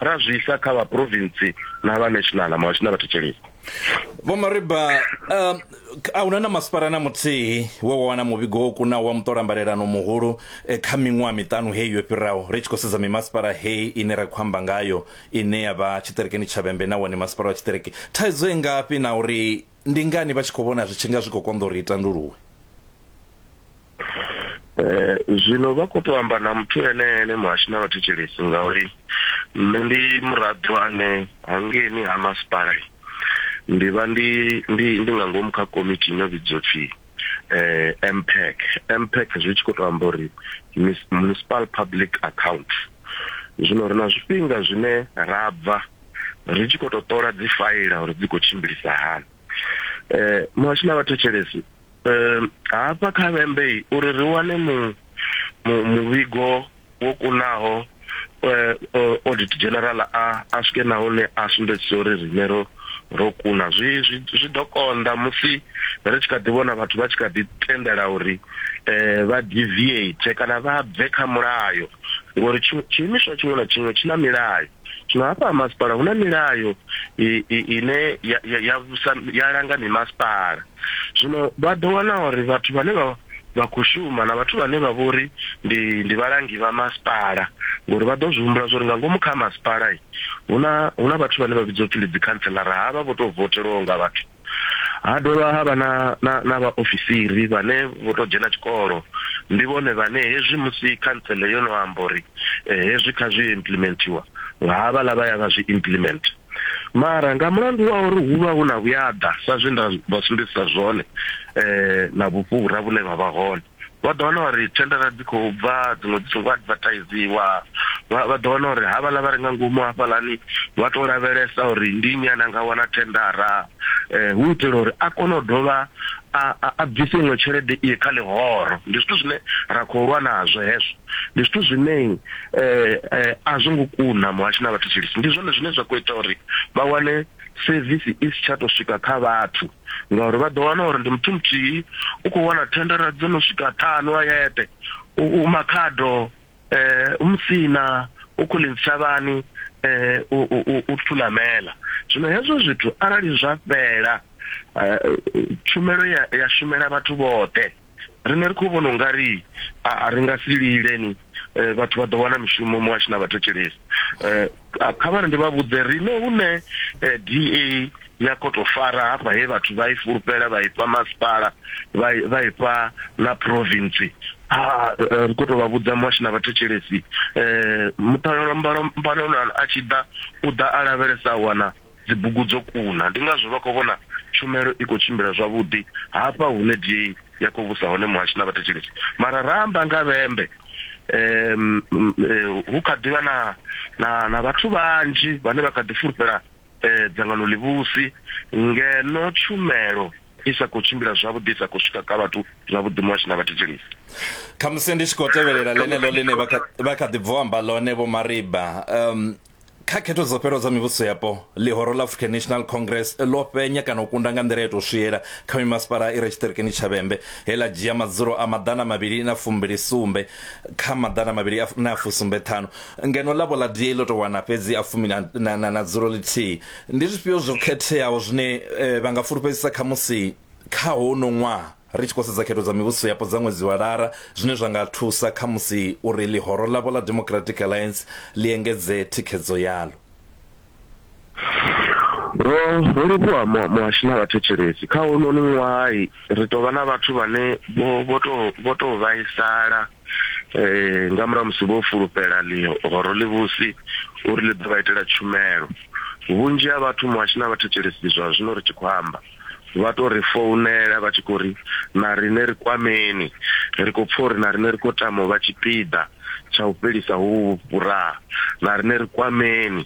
ra zwisa kha vha province na vha national ma vhashina vha thetshelesa vho mariba um, a huna na masipala na muthihi we wa wana muvhigo wo kunaho wa muṱolambalelano muhulu eh, kha miṅwaha miṱanu heyi yo fhiraho ri tshi khou sedza mimasipala heyi ine ra khou amba ngayo ine ya vha tshiṱerekeni tshavhembe na wone masipala wa tshiṱereke thaidzo i ngafhi na uri Ndi ngani vha tshi khou vhona zwi tshi nga zwi khou konḓa uri i tanduluwe? Eh, zwino vha khou tou amba na muthu ene ene muhashi na vhathetshelesi ngauri nṋe ndi muraḓo ane hangeni ha masipala ndi vha ndi ndi ndi nga ngomu kha komiti ino vhidzwa pfhi eh MPAC MPAC zwi tshi khou tou amba uri municipal public account zwino ri na zwifhinga zwine ra bva ri tshi khou tou ṱola dzi faila uri dzi khou tshimbilisa hani um muhasho na vhathetshelesi um hafha kha vhembe uri ri wane mu muvhigo wo kunaho um audit general a a swike na hune a sumbedzisa uri riṋe ro ro kuna zwi zwi ḓo konḓa musi ri tshi kha ḓi vhona vhathu vha tshi kha ḓi tendela uri um vha deviate kana vha bve kha mulayo ngori tshiimiswa tshiṅwe na tshiṅwe tshi na milayo zwino hafha masipala hu na milayo ine ya ya ya vhusa ya langa mimasipala zwino vha ḓo wana uri vhathu vhane vha vha khou shuma na vhathu vhane vha vhori ndi ndi vhalangi vha masipala ngori vha ḓo zwi humbula zwori nga ngomu kha masipala huna huna vhathu vhane vha vhidzwa upfhi ndi dzi councillor havha vho to votelwaho nga vhathu Ha dovha ha vha na, na, na vhaofisiri vhane vho tou dzhena tshikolo. Ndi vhone vhane hezwi musi khantsele yo no amba uri eh, hezwi kha zwi implimentiwa nga havhaḽa vha ya vha zwi implement. Mara nga mulandu wa uri hu vha hu na vhuyaḓa sa zwe nda vha sumbedzisa zwone eh, na vhufhura vhune vha vha hone. Vha ḓo wana uri thendara dzi khou bva dziṅwe dzi songo advertisiwa, vha vha ḓo wana uri havhaḽa vha re nga ngomu hafhaḽani vha to lavhelesa uri ndi nnyi ane a nga wana thendara hu u itela uri a kone u dovha a a bvise iṅwe tshelede i kha ḽihoro. Ndi zwithu zwine ra khou lwa nazwo hezwo, ndi zwithu zwine a zwo ngo kuna muhasho na vhathetshelesi ndi zwone zwine zwa kho ita uri vha wane sevisi i si tsha to swika kha vhathu. ngauri vha ḓo wana uri ndi muthu muthihi u khou wana thendara dzo no swika ṱhanu a yeṱe u makhado um u musina u khou ḽi ntshavhani um u thulamela zwino hezwo zwithu arali zwa fhela tshumelo ya shumela vhathu vhoṱhe riṋe ri khou vhona ungari a ri nga si lileni eh, vhathu vha ḓo wana mishumo muhashu na vhathetshelesi eh, kha vhari ndi vha vhudze riṋe hune eh, da ya koto fara hafha he vhathu vha i fulufhela vha ifha masipala vha ifha na province ha ri khou tou vha vhudza muhashu na vhathetshelesi um muṱalelo mbalelo a tshi ḓa u ḓa a lavhelesa a wana dzibugu dzo kuna. Ndi ngazwo vha khou vhona tshumelo i khou tshimbila zwavhuḓi hafha hune DA ya khou vhusa hone muhasho na vhathetshelesi. Mara ra amba nga vhembe, hu kha ḓi vha na na vhathu vhanzhi vhane vha kha ḓi fulufhela dzangano ḽivhusi ngeno tshumelo i sa khou tshimbila zwavhuḓi, i sa khou swika kha vhathu zwavhuḓi muhasho na vhathetshelesi. Khamusi ndi tshi khou tevhelela ḽeneḽo ḽine vha kha ḓi bva u amba ḽone Vho Mariba, Kha khetho dzo fhelaho dza mivhuso yapo, ḽihoro ḽa African National Congress ḽo fhenya kana u kunda nga nḓila i tou swiela kha mimasipala i re tshiṱirikini tsha Vhembe, he ḽa dzhia madzulo a maḓana mavhili na fumbili sumbe kha maḓana mavhili na fusumbe ṱhanu, ngeno ḽavho ḽa DA ḽo tou wana fhedzi a fumi na dzulo ḽithihi. Ndi zwifhio zwo khetheaho zwine vha nga fulufhedzisa khamusi kha hounoni ṅwaha? Ri tshi khou sedza khetho dza mivhuso yapo dza ṅwedzi wa Lara, zwine zwa nga thusa khamusi uri ḽihoro ḽavho ḽa Democratic Alliance ḽi engedze thikhedzo yaḽo. Ro ro livhuwa mu muhashi na vhathetshelesi. Kha hounoni ṅwaha ri tou vha na vhathu vhane vho vho tou vho tou vhaisala nga murahu ha musi vho fulufhela ḽihoro ḽivhusi uri ḽi ḓo vha itela tshumelo. Vhunzhi ha vhathu muhashi na vhathetshelesi zwa zwino ri tshi khou amba, vha to ri founela vha tshi khou ri na riṋe ri kwameni ri khou pfha uri na riṋe ri khou tama u vha tshipiḓa tsha u fhelisa hovhu vhuraha na riṋe ri kwameni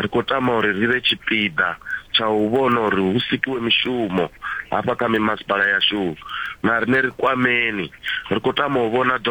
ri khou tama uri ri vhe tshipiḓa tsha u vhona uri hu sikiwe mishumo hafha kha mimasipala yashu na riṋe ri kwameni ri khou tama u vhona